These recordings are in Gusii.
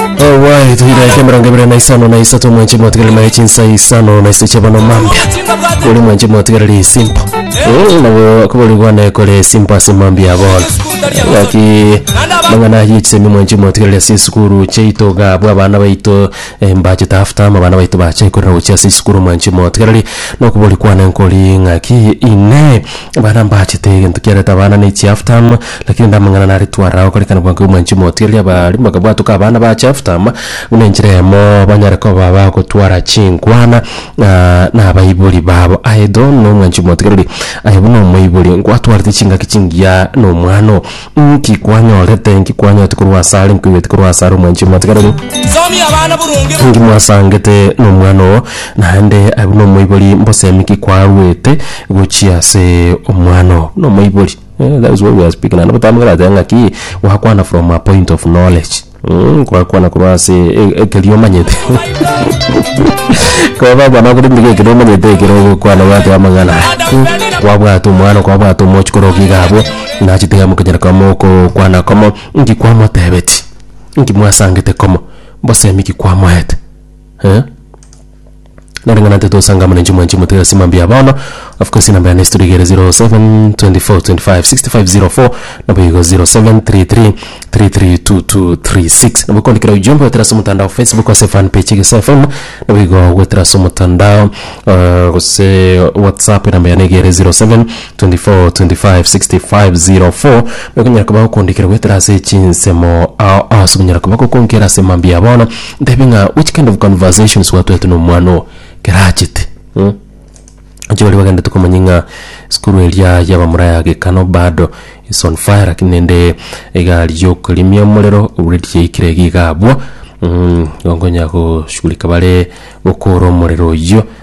Owai tuira yake mirongo ibere na isano na isato mwenche motigereri mare chinsa isano na isiche bono mambia kuri mwenche motigereri isimpo Eh, nabo kubori bwane kore simpo ase mambia bono yaki mang'ana ye chisemi mwenche motigereri ase esukuru cheito gabwa abana baito eh, mbache tafuta ama abana baito bache korera gochia ase esukuru mwenche motigereri nokobori kwane nkori ng'aki ine abana mbachete egento kiareta abana ne chiaftam Lakini ande amang'ana naretwe ara agokorekana bwango y'omwanchi omotwe, erio abaaria bakabwatoka abana ba Jefta, buna enchera eyemo banyare koba abagotwara chinkwana na abaibori babo. Aye Edom na omwanchi omotwe rirorio, aye buna omoibori, nkwatwarete chingaki chingiya na omwano. Inki kwanyorete? Inki kwanyorete korwa asare? Inki oigwete korwa asare omwanchi omotwe rirorio? Inki mwasangete na omwano oo? Naende aye buna omoibori, mbosemi ki kwarwete gochia ase omwano oo? Buna omoibori. Eeh that is what we are speaking naende botambe korateba ng'aki gwakwana from a point of knowledge mm kwakwana korwa ase e- ekeria omanyete Koba abana bakore mbuya ekero omanyete ekero ogokwana gwaeteba amang'ana mm kwabwata omwana kwabwata omochi kore iga iga abwo nachi tiga mokonyora koba mogokwana komo inki kwamotebeti inki mwasangete komo mbosemi ki kwamoete eh. Nere ng'a nantete osangamwe nenche mwanche motige ase mambia ya bono. Of course enamba yane estudio igere 0724256504 naboigo 0733332236 nabo okondikera ujumbe goetera ase omotandao Facebook ase fan page egesae FM naboigo goetera ase omotandao eh, gose WhatsApp enamba yane egere 07. 24256504 Nokonyara koba gokondikera goetera ase echinsemo ao aase okonyara koba gokonkera ase mambia ya bono ntebie ng'a which kind of conversations gwatwete na omwana oo ekero achete mm Inche baria bagenda tokomanya ng'a esukuru eria y'abamura ya Gekano bado is on fire lakini nende egari y'okorimia omorero already yaikire iga iga abwo mm igo nkonyara goshughulika bare gokoora omorero oyio.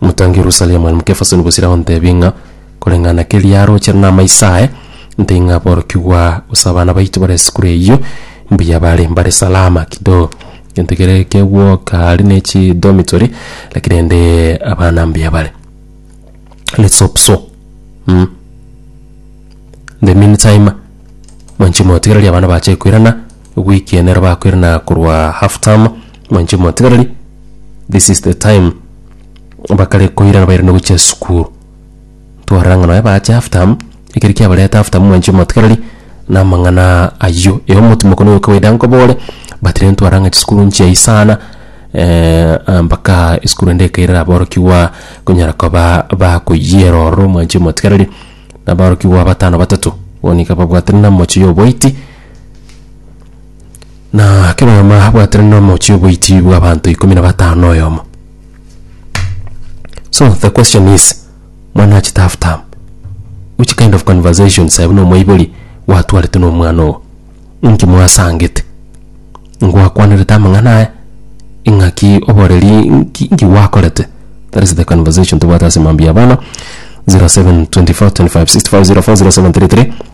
Motange Yerusalemu ere mokefasoni bosire agontebie ng'a koreng'ana keria arooche namaiso aye, ntainyaaborokigwa, gose abana baito bare esukuru eyio mbuya bare, mbare salama kidogo. Gento kere kegwoka aria ne chidormitory, lakini rende abana mbuya bare. Let's hope so mm. In the mean time, mwanchimwe gotiga riria abana bache koirana, ewiki eye nero bakoirana korwa half term, Mwanche mwatigarari, this is the time bakare koirana bairane gochia sukuru twarora ng'a nonya baache half term ekeri kiabareta half term mwanche mwatigarari na amang'ana ayio ero omotimoko noyo kawaida nkobore but rero ntwarora ng'a chisukuru nchiayi sana eh, ah, mpaka esukuru ende ekaire aborokigwa konyara koba bakoyiera ororo mwanche mwatigarari na aborokigwa batano batato bono iga babwatana na moche ya oboiti Na kera oyomo abwatire nomochie oboichi bw'abanto ikomi na batano oyomo. So the question is, mwana achete half term, which kind of conversations aye buna omoibori gwatwarete nomwana ogo? Inki mwasangete? Ngwakwanerete amang'ana aya? Ing'aki oboreri inki inki gwakorete? That is the conversation tobwate ase mambia abana 0724256504 0733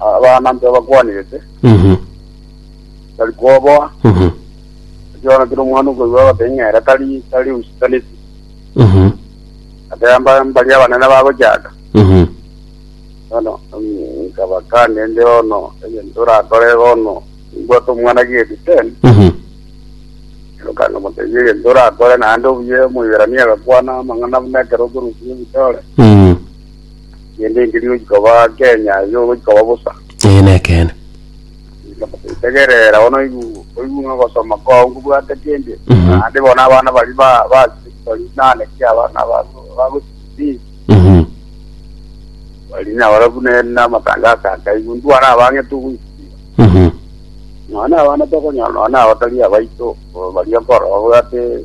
Abana nigo bakwanirete, Mhm. tari koboa. Mhm. Ekiagera kero omwana okoigwa agoteba ng'a ere tari tari usi tari esi. Mhm. Ateba mba- mbaria abanene bagochaka. Mhm. Bono mm, nkabakania inde bono egento orakore bono mbwate omwana gate ten. Mhm. Eroka nkamotebia egento orakore naende obuya omoiberania agakwana amang'ana buna ekero okorusia ebitore. Mhm. Kende nkeri gochia koba Kenya yo gochia koba bosa. Eye nekeene. Tegerera bono oigu- oigu ng'a ogosoma kwao nkobwate kende. Mhm. Naende bono abana bari ba ba bari nane ki abana ba ba gochia Mhm. bari na barabu ne na matangazo akaigu ndwara abang'ete ogoisiba. Mhm. None abana tokonyora none abatari abaito o, baria korora obwate